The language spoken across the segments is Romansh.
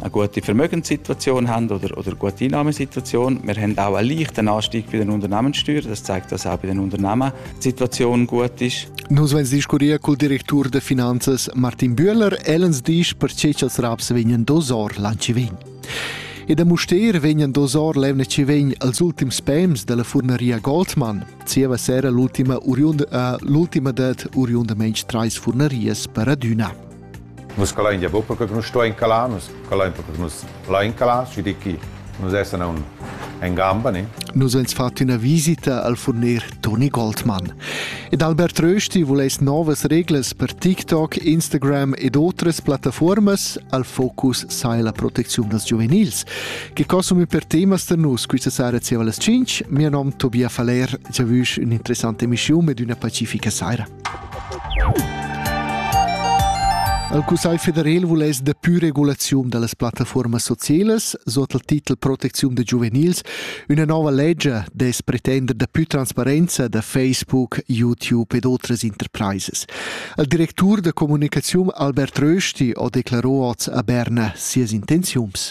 eine gute Vermögenssituation haben oder, oder gute Einnahmensituation. Wir haben auch einen leichten Anstieg bei den Unternehmenssteuern. Das zeigt das auch bei den Unternehmen. Die Situation gut ist. Nus veis discurrir cul directur de finanzas Martin Bühler, ellens disch perche ch'als raps vegnan dosor lanci vegn. E da Muster vegnan dosor levne ci vegn als ultims pems della furneria Goldmann. Zieva sera l'ultima, uriunda, uh, l'ultima det uriunda mensch trais furnerias per adüna. Nus calain gia buca che nus stuein calar, nus calain perché nus lain calar, schi di chi. Nus essan aun en gamba, ne? Nus ens fat üna visita al furner Toni Goldmann. Ed Albert Rösti vuless novas reglas per TikTok, Instagram ed otras plattaformas al focus sai la protecziun das giuvenils, che consumi per temas da nus questa sera zieva las 5. Mio nom Tobias Faller, giavüsch un'interessante emissiun ed una pacifica sera. El Cussegl federal vuless dapi regulaziun da las plattafuormas socielas sot il titel Protecziun da giuvenils üna nova legia dess pretender daplü transparenza da Facebook, YouTube ed otras interpraisas. Il directur da comunicaziun Albert Rösti ha declaro oz a Berna sias intenziuns.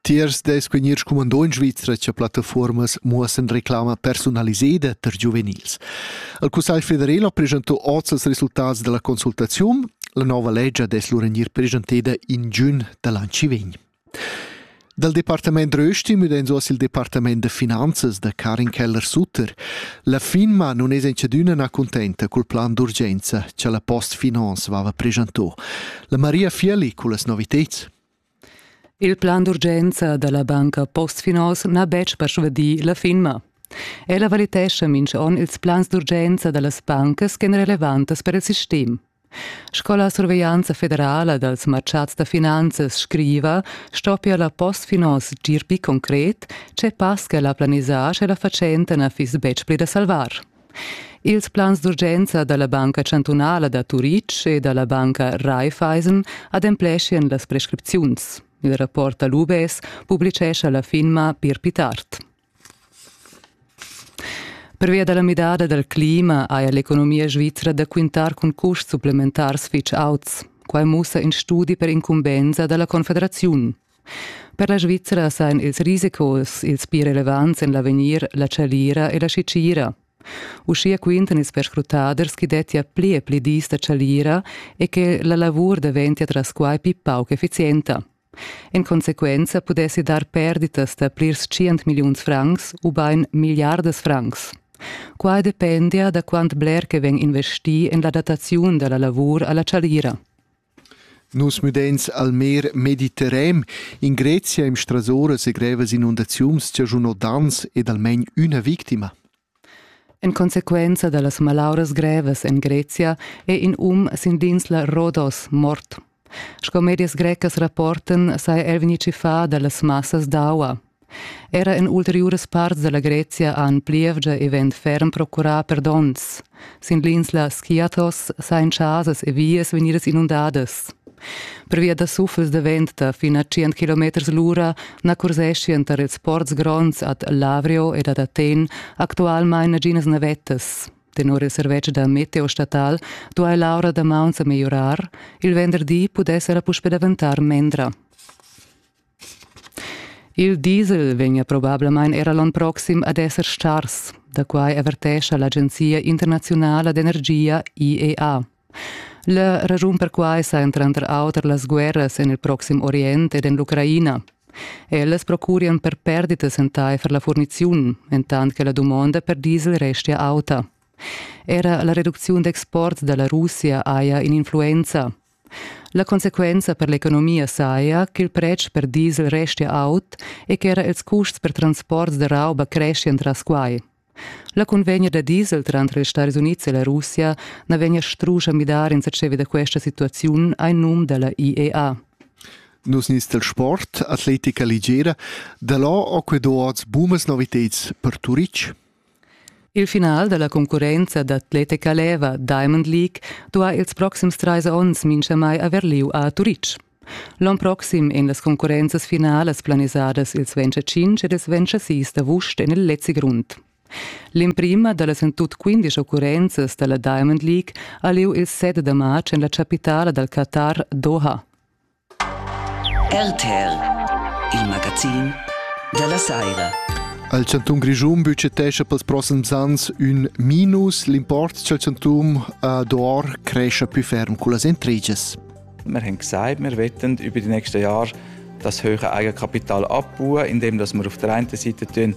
Tiers dess vegnir scumandò in Svizra che plattafuormas muossan reclama personaliseda per giuvenils. Il Cussegl federal ha presentò oz els resultats della consultazione. La nova legge dess lur gnir presenteda in giugn dall'ann ci vegn. Dal Departament Rösti müdenso sil Departament da Finanzas da Karin Keller-Sutter. La firma non es encedüna na contenta col plan d'urgenza che la Post Finance vava presentò. La Maria Fieli culas noviteds. Il plan d'urgenza dalla banca Postfinance n'ha betg persvadì la finma. Ella valitescha mintga onn ils plans d'urgenza dallas bancas ch'èn relevantas per il sistem. Sco la surveglianza federala dals martgads da finanzas scriva, stoppia la Postfinance gir pli concret, tge pass che la planisar sche la fatschenta na fiss betg pli da salvar. Ils plans d'urgenza da la Banca chantunala da Turitg e da la banca Raiffeisen adempleschien las prescripziuns. Il rapport da l'UBS publicescha la firma Pier Pitart. Pervia da la midada dal clima haja l'economia svizra da quintar cun custs supplementars fitg auts. Quai mussa in studi per incumbensa da la Confederaziun. Per la Svizzera sajan ils risicos ils pli relevants en l'avegnir la chalira e la schitgira. Uschia quintan ils perscrutaders ch'i dettia pli e pli dis da chalira e che la lavur daventia tras quai pli pauc effizienta. En consequenza pudessi dar perditas da plirs tschient milliuns francs ubain milliardas francs. Quai dependia da quant bler che vegn investì en la dataziun da la lavur a la chalira. Nus müdains al mer Mediterran in Grezia im Strasora segrevas inundaziuns chaschunò daners ed almain üna victima. En consequenza da las malauras grevas en Grezia è in um sin l'insla Rodos mort. Sco medias grecas rapportan saja er vegnì tschiffà da las massas d'aua. Era en ulteriuras parts dalla Grezia han plievgia e vent ferm procurà per donns. Sin l'insla Skiathos sain chasas e vias vegnidas inundadas. Pervia da suffels da vent da fin a 100 km l'ura na curseschian tar ils ports gronds ad Lavrio ed ad Aten actualmain naginas navettas. Tenor il servetsch da meteo statal duai l'aura da mauns megliorar. Il venderdi pudess era puspè daventar mendra. Il diesel vegnia probablamain era l'onn proxim ad esser stars, da quai avertescha l'agenzia internaziunala d'energia IEA. Leu raschun perquai sajan tranter auter las guerras en il proxim Orient ed en l'Ucraina. Ellas procurian per perditas entaifer la furniziun, entant che la dumonda per diesel restia auta. Era la reducziun d'export da la Russia haja in'influenza. La consequenza per l'economia saja ch'il pretsch per diesel restia aut e ch'era ils custs per transports da rauba creschian tras quai. La cunvegna da diesel tranter ils Stadis Unids e la Russia na vegnia strusch a midar insatge da questa situaziun ein num dalla IEA. Nus nins del sport, atletica ligera, da là ho que duots bumas novitads per Turitg. Il final dalla concurrenza d'atletica leva Diamond League duha ils proxims trais onns minchamai haver liu a Turitg. L'on proxim ein las concurrenzas finalas planisadas ils 25 ed ils 26 d'avust en il Lezzigrund. L'emprima dallas en tut 15 occurrenzas dalla Diamond League ha liu il 7 da marz en la capitala dal Qatar Doha. RTL, il magazin dalla saira. Al chantun Grischun budgetescha pels prossims ans ün minus. L'import dal chanton a Dor cresce più ferm con las entriges. Wir haben gesagt, wir wollen über die nächsten Jahre das höhere Eigenkapital abbauen, indem wir auf der einen Seite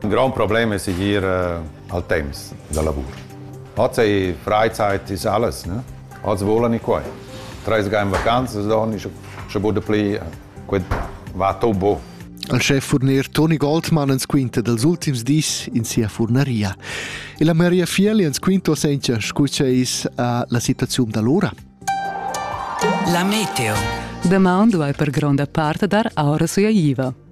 In grond problem è segir eh, al temps da lavur. Oz è Freizeit ist alles. Ne? Oz volan i quai. Treis ga in vacanzas, dann ist schon gut pli quel va to bo. Al schef-furner Toni Goldmann ens quinta dals ultims dis in sia furnaria. E la Maria Fieli ens quinto senza scu c'è is uh, la situazione da l'ora. La meteo. Damaun duai per gronda parte dar aura suia iva.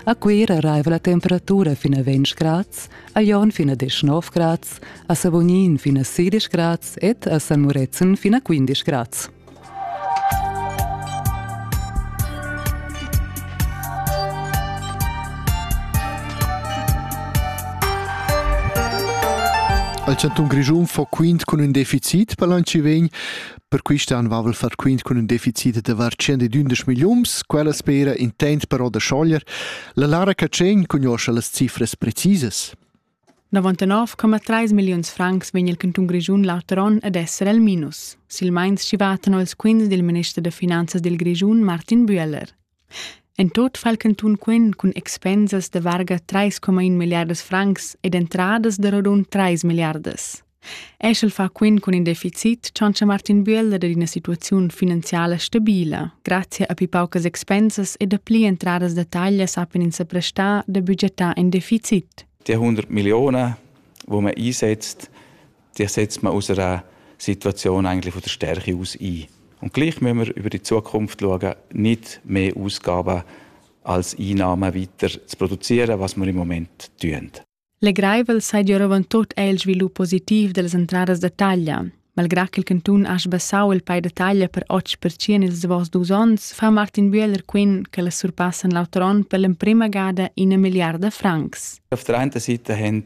A Cuira raiva la temperatura fin a 20 grads, a Jon fin a 19 grads, a Savognin fin a 16 grads ed a San Murezzan fin a 15 grads. Al chantun Grischun fo quint cun ün deficit per l'an ci vegn Per quist an vavel far quint cun ün deficit da var 112 milliuns, quella spera intent però da schoglier. La Lara Catschegn cugnuoscha las cifras precisas. 99,3 milliuns francs vegn il cantun Grischun l'auter on ad esser al minus, silmeins chi vatan els quints dil minister da finanzas dil Grischun, Martin Büeller. En tut fa il cantun quint cun expensas da varga trais coma in milliardas francs ed entradas da rodund trais milliardas. Eschel fa quint cun in deficit tschantscha Martin Bühler ad ina situaziun finanziala stabila, grazia a pi paucas expensas e da pli entradas da taglia sappian ins sa prestar da budgetar in deficit. Die 100 Millionen, die man einsetzt, Dir setzt man aus einer Situation eigentlich von der Stärke aus ein. Und gleich müssen wir über die Zukunft schauen, nicht mehr Ausgaben als Einnahmen weiter zu produzieren, was wir im Moment tun. Legraivel sei Giovantot è il sviluppo positiv delle entradas da taglia. Malgrà che il cantun ha sbassau il pay da taglia per 8% ils davos dus onns, fa Martin Bühler quin che la surpassan l'auter onn per l'emprima gada ina milliarda francs. Auf der einen Seite haben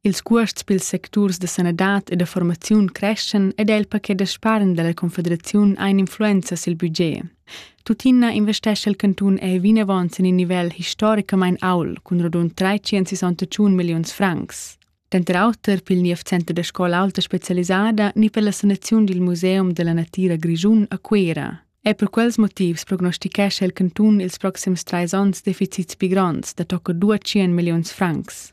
Ils cuosts pils secturs da sanadad e da formaziun creschan ed è il paquet da spargn dalla Confederaziun ein influenza sil budget. Tuttina investescha il cantun è vinavon sin in nivel historicamain aul cun rodund 361 milliuns francs. Denter auter pil niev center da scola alta specialisada ni per la sanaziun dil Museum della Natira Grischun a Cuera. E per quels motivs prognostichescha il cantun ils proxims trais onns deficits pli gronds da tocca 200 milliuns francs.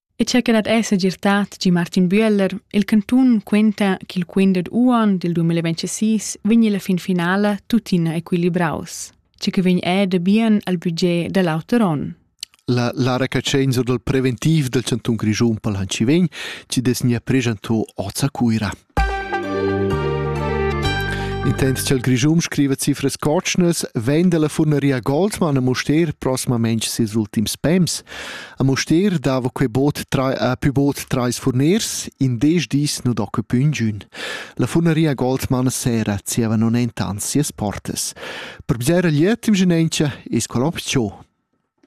E cha que dat es segirtà tgi Martin Büeller, il cantun quenta ch'il quint dad uonn dil 2026 vegni la fin finala tuttina equilibraus, che que vegn er da bien al budget da l'auter onn. La, la recatschenza dal preventiv del Cantun Grischun pal Hanci vegn, ci des nia pregento oz a Cuira. Intents ch'el Grischun scriva cifras cotschnas vegn dalla furnaria Goldmann a Mustér prosmamain ses ultims pems. A Mustér dava quei boot trai, a pü boot trais furners, in dez dis nu docca pü ingün. La furnaria Goldmann sera zieva non entan sias portas. Per bger lietim genentia es qual opziun.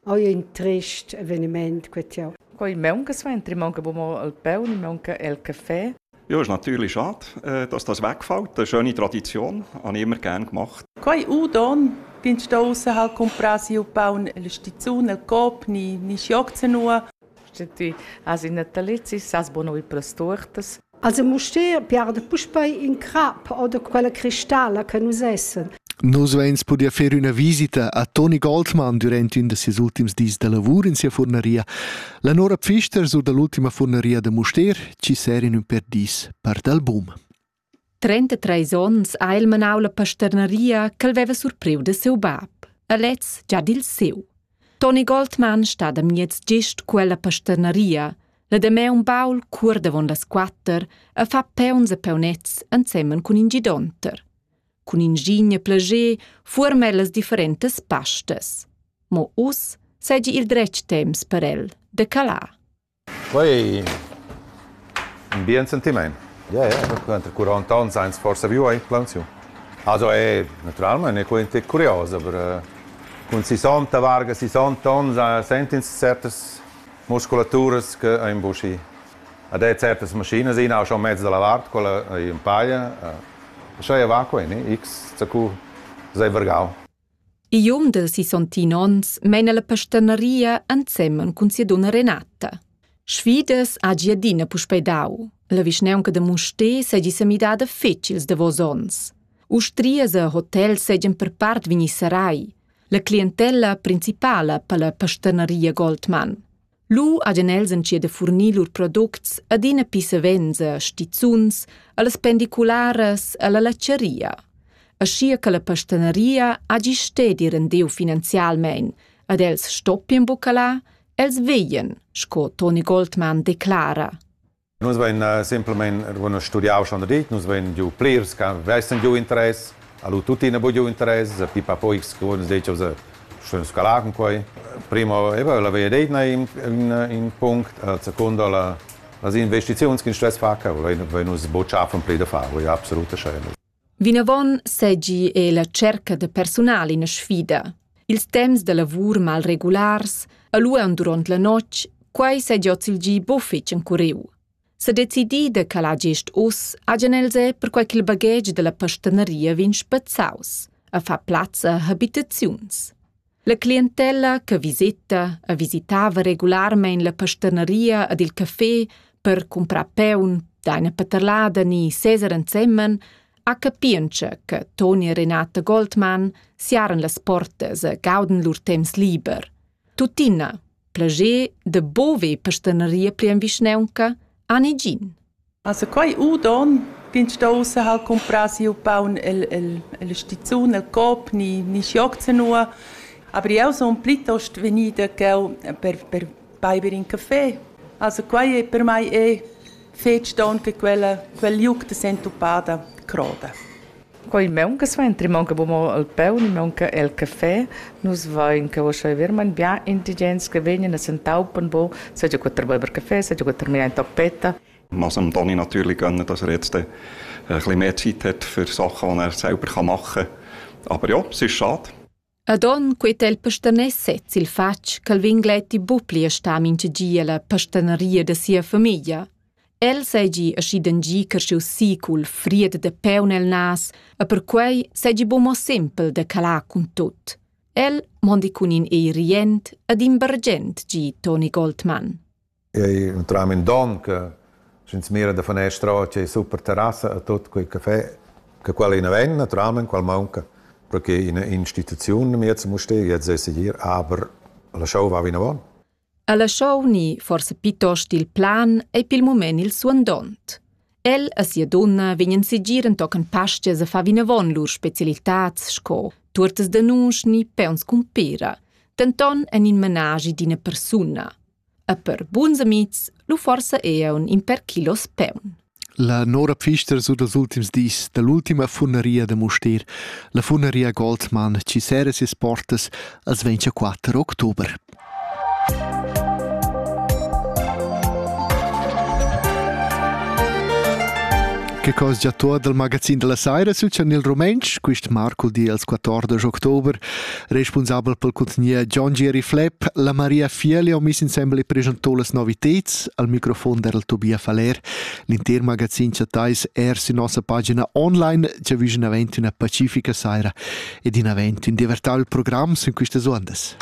Ho ün trist eveniment cu tieu. Co il maunca suenter? Maunca bu mo il paun, maunca el caffè? Ja, ist natürlich schade, äh, dass das wegfällt. Eine schöne Tradition, habe ich immer gern gemacht. Quai udon, bin sta ussa hal cumprà siu paun el stizun, el cop, ni, ni schioc zanua. Sti, has in natalizis, has bono i plas tortas. Also Mustér piarda puspei in crap oder quella cristalla che nus essen. Nus veins pudia fer üna visita a Toni Goldmann durant ün da ses ultims dis da lavur in sia furnaria, la Nora Pfister sur dall'ultima furnaria da Mustér, ci ser in ün per dis part album. 33 onns ha el manau la pasternaria ch'el veva surpriu da siu bab, a lez già dil siu. Toni Goldmann stat a miez gist quella pasternaria, la Dameun Paul cur davon las quatter e fa peons e peunets ensemen cun in gidonter. Cun ingigne plager fuorma el las differentas pastas. Mo uss seigi il dretg temps per el de calar. Quei ün bien sentimaint. Ie ie, perche inter quaranta ons ains forsa viu aint plansiun. Also è natüralmaing è quaint e curios, aber cun sissanta varga, sissanta ons sent'ins certas musculaturas che ein buschi. Ad è certas maschinas, ina ha schon mezz da la vart, quella ei ün paia. Scha ei va quei, ne? X, zacù, s'ei vargau. igl um de sisontin onns meina la pastanaria ensemen cun sia dunna Renata. Sfidas hagi adina puspei dau. La vischneunca de Musté seigi semidada fetg ils davos onns. Ustrias e hotel seigien per part vegni sarai. La clientella principala per la pastanaria Goldmann. Lu hagen els entschiet a furnir lur products adina pli savens a stizuns, allas pendicularas, alla latscharia. Aschia che la pastaneria hagi stedi rendiu finanzialmein ad els stoppien buca la, els vegien, sco Toni Goldmann declara. Nus vein eh, semplamein bueno, studiau schon da dit, nus vein giu plirs che vessen giu interess, allo tuttina bu giu interess, pipa poi scuon sech of schön scalar con quei. Primo eva la veia deit in, in, in punct, la seconda la, las investiziuns che in stress fa, che vein nus bocciar von pli da far, voi absolut schein. Vinavon seigi ei la tscherca da persunal ina sfida. Ils temps da lavur malregulars, a lueun duront la notg, quei seigi oz il gi buffetg encuriu. Sa decidi da calar gest uss hagen els è perquai ch'il baghetg dalla pastaneria vegn spezzaus, a far plazza a habitaziuns. La clientella che viseta e visitava regularmein la pasterneria ed il café per cumprar peun d'eina paterlada ni seser ensemen, ha capientscha che Toni e Renata Goldmann siaran las portas e gauden lur temps liber. Tuttina, plager de bove pasterneria pli en vischneunca, ha negin. Also quei udon ch'ins sto ussa ha'l cumprà siu paun el el el stizun, el Coop, ni ni schioc zanua. Aber jeu sun plitost vegnida cheu per per beiber in café. Also quei è per mei è fetg don che quella quel liug da sentupada croda. Quei maunca suenter, maunca mo il paun, maunca el caffè. Nus vein che ussa vermain bien indigens che vegnan a s'entaupan bo, seigi quei per beiber caffè, seigi quei per mirar in tappetta. Was dem Toni natürlich gönnen, dass er jetzt ein bisschen mehr Zeit hat für Sachen, die er selber machen kann. Aber ja, es ist schade. Ad onn quei tel pastaners sez il fatg ch'el vegn gleiti buc pli a star mintga gi ella pastaneria da sia famiglia. El seigi aschidan gi carschius si cul fried da paun el nas e perquei seigi buc mo sempel da calar cun tut. El mondi cun in ei rient ed imbargent gi Toni Goldmann. Io entram in don che sch'ins mira da fanestra o c'è super terrassa a tut quei café che quella ina ven naturalment qual maunca perché in instituziun miez must jetzt sei segir aber la show va vinavon. Alla show ni forse piuttost il plan ei pil mument il suandont. El e sia donna vegnan segir entochen pastia se fa vinavon lur specialitats sco tuortas da nus ni peons cumpera, denton en in menagi d'ina persuna. E per buns amics lu forsa ean in per kilos peun. La Nora Pfister su dals ultims dis dall'ultima funneria da Mustér, la funneria Goldmann, ci sera sias portas als 24 october. Che cosa già tu dal magazin della Saira su Chanel Romenc, quist Marco di als 14 october, Responsabel pel cuntgnier John Geri Flepp, la Maria Fieli ho miss insembel e presentò las noviteds al microfon dal Tobia Faller. L'inter magazin chattais er sü nossa pagina online già vügin avent üna pacifica saira ed in avent ün divertau il program sün quistas uondas.